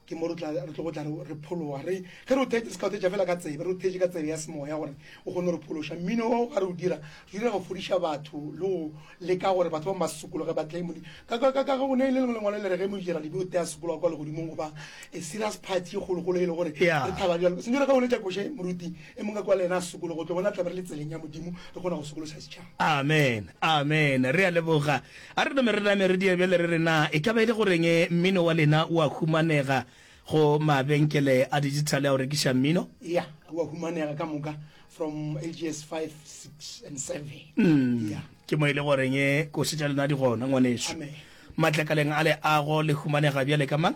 ke mo re tlogo tla re phologa re ge re o theetše se ka o theetša fela ka tsebe re o theetše ka tsebe ya semoya gore o kgone re phološa mmino o ga re o dira re dira go fodiša batho le go leka gore batho ba masokologe ba tle modimo ka go ne e le lengwe lengwalo le re ge mojera dibe o tea sokologa kwa legodimong goba e serious party e kgolokgolo e le gore re thaba jalo sentse re ka boletša koše moruti e mongwe kwa le yena a sokologo tlo bona tlabe re le tseleng ya modimo re kgona go sokološa setšhaba amen amen re a leboga A re nome re name re diebele re re na e ka ba e le goreng mmino wa lena o a humanega go mabenkele a dijithale a go rekiša mmino? Eya, o a humanega ka moka from ages five, six and seven. Eya. Ke mo e le goreng koše tša lena di gona, ngwanešu. Amen. Matlakaleng a leago le humanega bjale ka mang?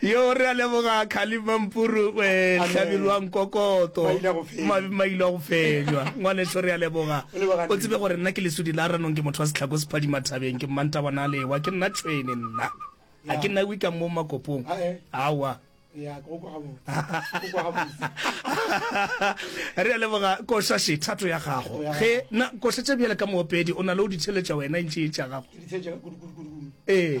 Yo, re a leboga Khalib Mampuru, e, hlabirwang kokoto, mabe mailwa go fenywa. Ngwaneso, re a leboga. O tsebe gore nna ke lesudi la ranong, ke motho wa setlhako sephadima thabeng, ke mmantabana a lewa, ke nna tšhwene nna. Ga ke nna wikang mo makopong. Aowa. Re a leboga, koša še thato ya gago. Ge, na, koša tše bjale ka moopedi, o na le go di theletša wena, e ntše e tša gago. Ee.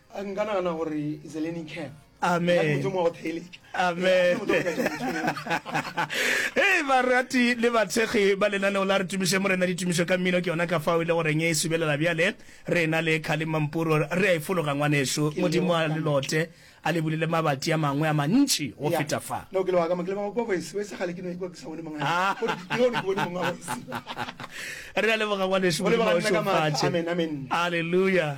a nka nagana gore is a learning curve amen amen ee barati le batshegi ba lenaneo la re tumiše morena ditumišo ka mmino ke yona ka fao e le goreng e subelela bjale re na le khale mampuro re a e fologa ngwaneso modimo a lelote a le bulile mabati a mangwe a mantši go feta fa re a leboga ngwaneso modimo a o šofatše alleluja